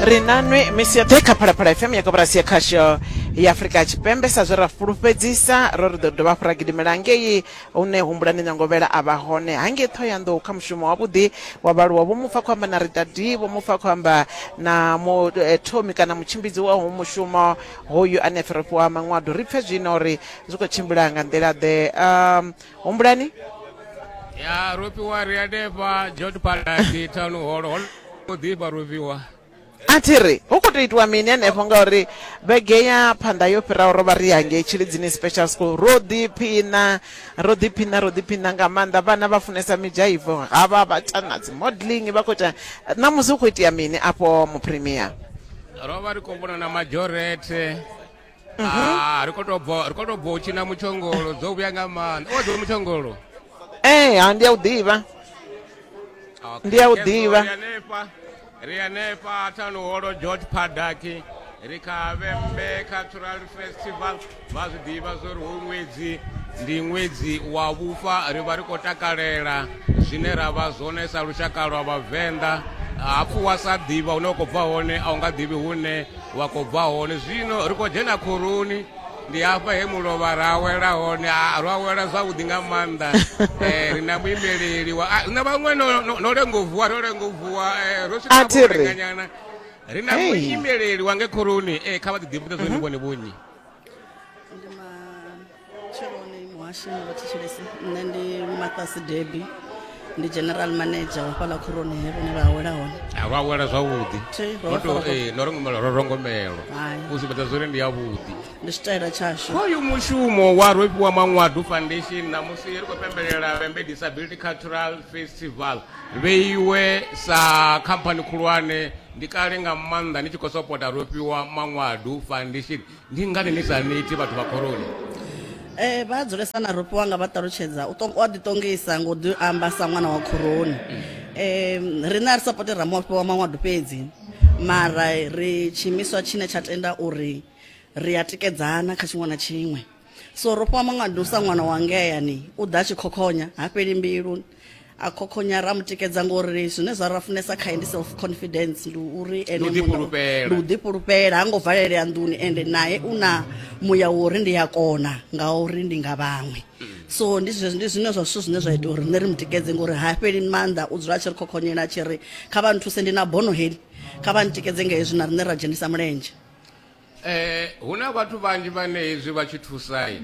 ri nanwe misi yoṱhe kha phalaphala fm ya koporasi ya khasho ya afurika tshipembe sa zwe ra fulufhedzisa ro ri ḓo dovha hafhu ra gidimela ngei hune humbulani nyangovhela a vha hone hangei ṱhohoyanḓou kha mushumo wavhuḓi wa vhaaluwa vho mufa khou amba na ritadi vho mufa khou amba na muthomi kana mutshimbidzi wa ho mushumo hoyu ane a pfhi ro fhiwa maṅwado ri pfe zwino uri zwi khou tshimbila nga nḓila ḓe um, humbulani ya rofhiwa ri a defha jot palati town hall hol o ḓifha rofhiwa a thi ri hu khou tou itiwa mini henefho ngauri vhege ya phanḓa yo fhiraho ro vha ri hangei tshilidzini special school ro ḓiphina ro ḓiphina ro ḓiphina nga maanḓa vhana vha funesa midzhaivo ha vha vha ta na dzi modeling vha khou ita ṋamusi hu khou itea mini afho mupremier ro vha ri khou vhona na majorete Ah, ri khou tou bva ri khou tou bva u tshina mutshongolo dzo vhuya nga maanḓa o dzo mutshongolo ee ha ndi a u ḓivha Okay, Ndi a u yes, ḓivha. ri hanefha ri hanefha thanuholo george padaki ri kha vhembe cultural festival vha zwi ḓivha zwo ri hu ṅwedzi ndi ṅwedzi wa vhufa ri vha ri khou takalela zwine ra vha zwone sa lushaka lwa vhavenḓa hapfu wa sa ḓivha hune wa khou bva hone a u nga ḓivhi hune wa khou bva hone zwino ri khou dzhena khoroni ndi hafha he mulovha ra awela hone ro awela zwavhuḓi nga maanḓa eh, ri na muimeleli na vhaṅwe no lengo vuwa ro lengo vuwa eh, ro swikaenganyana ri na muimeleli wa nge khoroni eh, kha vha ḓiḓimbudze zwone mhm. vhone vhonyi tsheloni muhashi wa thetshelesi nṋe ndi mathas debi ndi general manager wa fhaḽa khuroni he vhone vha awela hone a vha awela zwavhuḓi eh, no rongomela ro rongomelo u sumbedza zwori ndi yavhuḓi ndi tshitaela tshashu hoyu mushumo wa rofhiwa manwadu foundation namusi ri khou pembelela vembe disability cultural festival vheiwe sa khamphani khulwane ndi kale nga maanḓa ni tshi khou sopota rofhiwa manwadu foundation Ndi ngani ni sa ni iti vhathu vha khoroni? E, vha dzulesa na Rupiwa nga vha ṱalutshedza. U ṱong- u a ḓiṱongisa nga u ḓi amba sa ṅwana wa khoroni. E, riṋe a ri sapoti Ramafhi wa Manwadu fhedzi, mara ri tshiimiswa tshine tsha tenda uri ri a tikedzana kha tshiṅwe na tshiṅwe. So Rofhiwa Manwadu sa ṅwana wa ngeyani u ḓa a tshi khokhonya, ha fheli mbilu, a khokhonya ra mu tikedza ngori zwine zwa ra funesa khae ndi self confidence ndi uri ene ndi u ḓifhulufhela ha ngo valelea nḓuni ende naye u na muya wa uri ndi a kona nga uri ndi nga vhaṅwe so ndi ndi zwine zwa zwithu zwine zwa ita uri nṋe ri mu tikedze ngori ha fheli maanḓa u dzula a tshi ri khokhonyela a tshi ri kha vha nthuse ndi na bono heli kha vha ntikedze nga hezwi na riṋe ra dzhenisa mulenzhe Eh, hu na vhathu vhanzhi vhane hezwi vha tshi thusai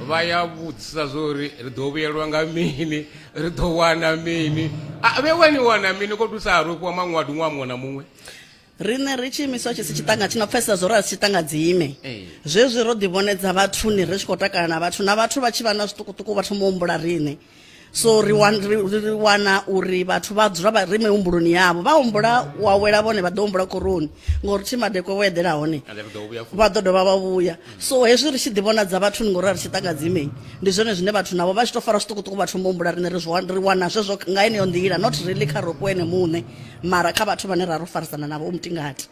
vha ya vhudzisa zwo ri ri ḓo vhuyelwa nga mini ri ḓo wana mini a vhe wani wana mini ko thusa ha rofhiwa maṅwadi ṅwaha muṅwe na muṅwe riṋe ri tshi imiswa tshi si tshiṱanga tshi no pfesesa zwo ri a si tshiṱanga dzime Ee. zwezwi ro ḓivhonedza vhathuni ri tshi khou takala na vhathu na vhathu vha tshi vha na zwiṱukuṱuku vha thoma u humbula riṋe so ri wan- ri- ri ri wana uri vhathu vha dzula vha ri mihumbuloni yavho vha humbula wa wela vhone vha ḓo humbula koroni ngori thi madekwe wo eḓela hone And then we go, we are full. vha ḓo dovha vha vhuya so hezwi ri tshi ḓivhonadza vhathuni ngori a ri tshi ṱangadzimei ndi zwone zwine vhathu navho vha tshi tou fara zwiṱukuṱuku vha thoma u humbula riṋe ri zwi wan- ri wana zwezwo nga eneyo nḓila not really kha ropo ene muṋe mara kha vhathu vhane ra ro farisana navho u mutingati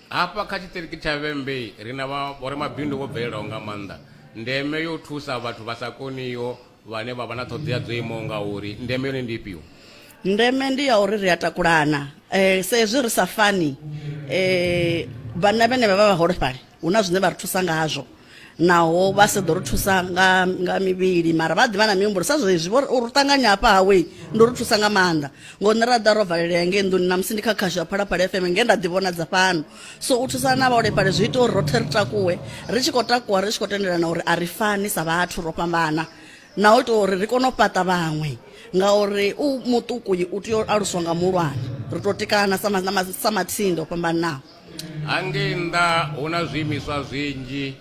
hafha kha tshiṱiriki tsha vhembe ri na vha- vhoramabindu vho bvelelaho nga maanḓa ndeme yo thusa vhathu vha sa koniho vhane vha vha na ṱhoḓea dzo imaho nga uri ndeme yone ndi ifhio ndeme ndi ya uri ri a takulana um sa ezwi ri sa fani um vhanna vhene vha vha vhaholefhali hu na zwine vha ri thusa ngazwo naho vha sa ḓo ri thusa nga nga mivhili mara vha ḓivha na mihumbulo sa zwezwi vho ri ṱanganya hafha hawe ndo ri thusa nga maanḓa ngo nṋe ra ḓa ro valelea ngei nḓuni na musi ndi kha khasho ya phalaphala fm nge nda ḓi vhonadza fhano so u thusana na vhaholefhali zwi ita uri roṱhe ri takuwe ri tshi khou takuwa ri tshi khou tendelana uri a ri fani sa vhathu ro fhambana na u ita uri ri kone u fhaṱa vhaṅwe ngauri u muṱuku u tea u aluswa nga muhulwane ri tou tikana sa matsinde o fhambananaho hangei nnḓa hu na zwiimiswa zwinzhi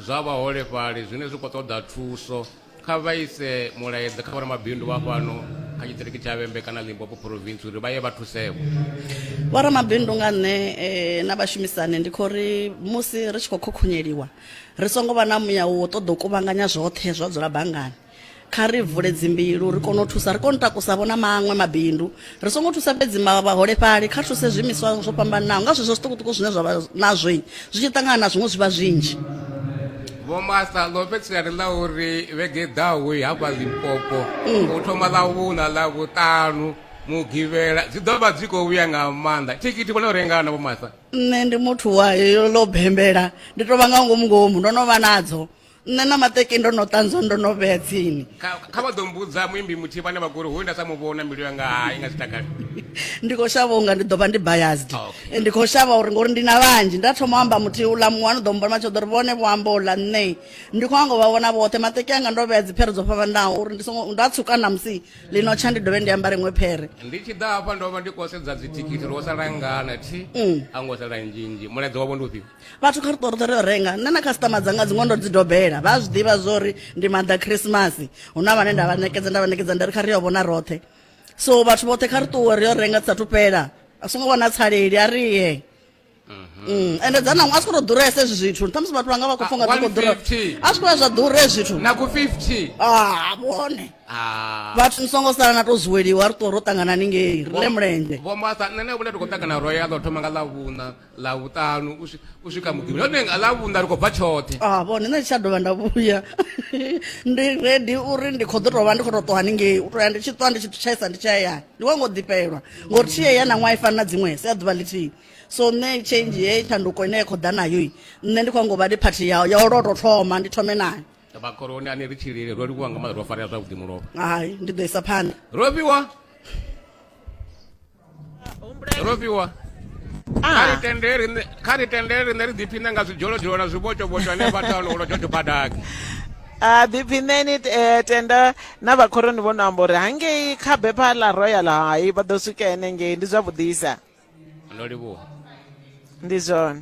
zwa vhaholefhali zwine zwi khou ṱoḓa thuso kha vha ise mulaedza kha vhoramabindu vha fhano kha tshiṱiriki tsha vhembe kana limpopo province uri vha ye vha thusevho vhoramabindu nga nṋe eh, na vhashumisani ndi khou ri musi ri tshi khou khokhunyeliwa ri songo vha na muya wo ṱoḓa u kuvhanganya zwoṱhe zwa dzula banngani kha ri vule dzimbilu ri kone u thusa ri kone u takusa vho na maṅwe mabindu Ri songo thusa fhedzi vhaholefhali, kha ri thuse zwiimiswa zwo fhambananaho nga zwezwo zwiṱukuṱuku zwine zwa vha nazwo zwi tshi ṱangana na zwiṅwe zwi vha zwinzhi. Vho Martha, ḽo fhedzisela ri ḽa uri vhege i ḓaho hafha Limpopo mm. u thoma ḽa vhuna ḽa vhuṱanu mugivhela dzi ḓo vha dzi khou vhuya nga maanḓa thikhithi vhona u rengana vho Martha nṋe ndi muthu wa yo ḽo bembela ndi tou vha nga ngomu ngomu ndo no vha nadzo nṋe na maṱeki ndo no ṱanzwa ndo no vhea tsini kha kha vha ḓo mbudza muimbi muthihi vhane vha gori hoyu nda sa mu vhona mbilu yanga hai nga zwitakale ndi khou shavha unga ndi ḓo vha ndi biased Ah, okay. ndi khou shavha uri ngori ndi na vhanzhi nda thoma u amba muthihi uḽa muṅwe ano ḓo mmbona matsho ḓo ri vhone vho amba uḽa nṋe ndi khou anga u vha vhona vhoṱhe maṱeki anga ndo vhea dziphere dzo fhambanaho uri ndi songo nda tsuka na musi ḽino tsha ndi dovhe ndi ambare iṅwe phere ndi tshi ḓa hafha ndo vha ndi khou sedza dzithikhithi ro sala ngana thi a ngo sala nzhinzhi mulaedza wavho ndi ufhio vhathu kha ri ṱori ṱori yo renga nṋe na khasitama dzanga dziṅwe ndo dzi dobela vha zwi ḓivha zwori ndi maḓa khrisimasi hu na vhane nda vha ṋekedza nda vha ṋekedza nda ri kha ri yo vhona roṱhe so vhathu vhoṱhe kha ri ṱuwe ri yo renga dzi sathu fhela a songo vha na tsaleli a ri ye Mm, ende dza naṅwe a swi khou tou ḓuresa hezwi zwithu ṱhamusi vhathu vhanga vha khou funga dzi khou ḓura 150. a swi khou ya zwa ḓura hezwi zwithu na ku 50 ah vhone Ah. vhathu ni songo sala na tou zuweliwa ri ṱuwa ro ṱangana ningei ri le mulenzhe Vho Martha, nṋe na vhone ri khou ṱangana royal o thoma nga ḽa vhuṋa ḽa vhuṱanu u swika muḓini hone nga ḽa vhunda ri khou bva tshoṱhe a ah, vhone nṋe tsha dovha nda vhuya ndi redi uri ndi khou ḓo tovha ndi khou to ṱuwa haningei u toya ndi tshi ṱuwa ndi tshi tshaisa ndi tshi hayani ndi wa ngo ḓifhelwa ngori tshi yeya na ṅwaha i fani na dziṅwe si a ḓuvha ḽithihi so nṋe change ye tshanduko ine ya khou ḓa nayo nṋe ndi khou ngo vha ndi phathi yao ya u lwa to thoma ndi thome nayo vhakoroni ane ri tshilile ro livhuwa nga maḓa ro farea zwavhuḓi mulovha hai ndi ḓo isa phanḓa ro fhiwa Ro fhiwa kha ri ah. tende riṋe kha ri tende riṋe ri ḓiphine nga zwidzholozholo na zwivhotshovhotsho ane vha tano ulo tshotsho badaki a ah, ḓiphineni eh, tenda na vhakhoroni vho no amba uri hangei kha bepha ḽa royal hai vha ḓo swika henengei ndi zwavhuḓisa ndo livhuwa ndi zwone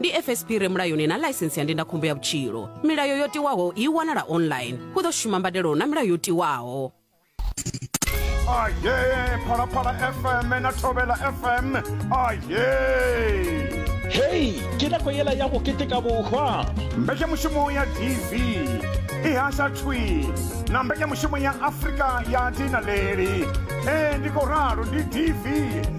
ndi fsp re mulayoni na ḽaisensi ya ndindakhombo ya vhutshilo milayo yo tiwaho i wanala online hu ḓo shuma mbadelo na milayo yo tiwaho aye phalaphala fm na thobela fm aye hei ke nako yela ya go keteka bohwa mbekemushumo ya dv i hasha thwi na mbekemushumo ya afrika ya dinaleli ee ndi ko ralo ndi dv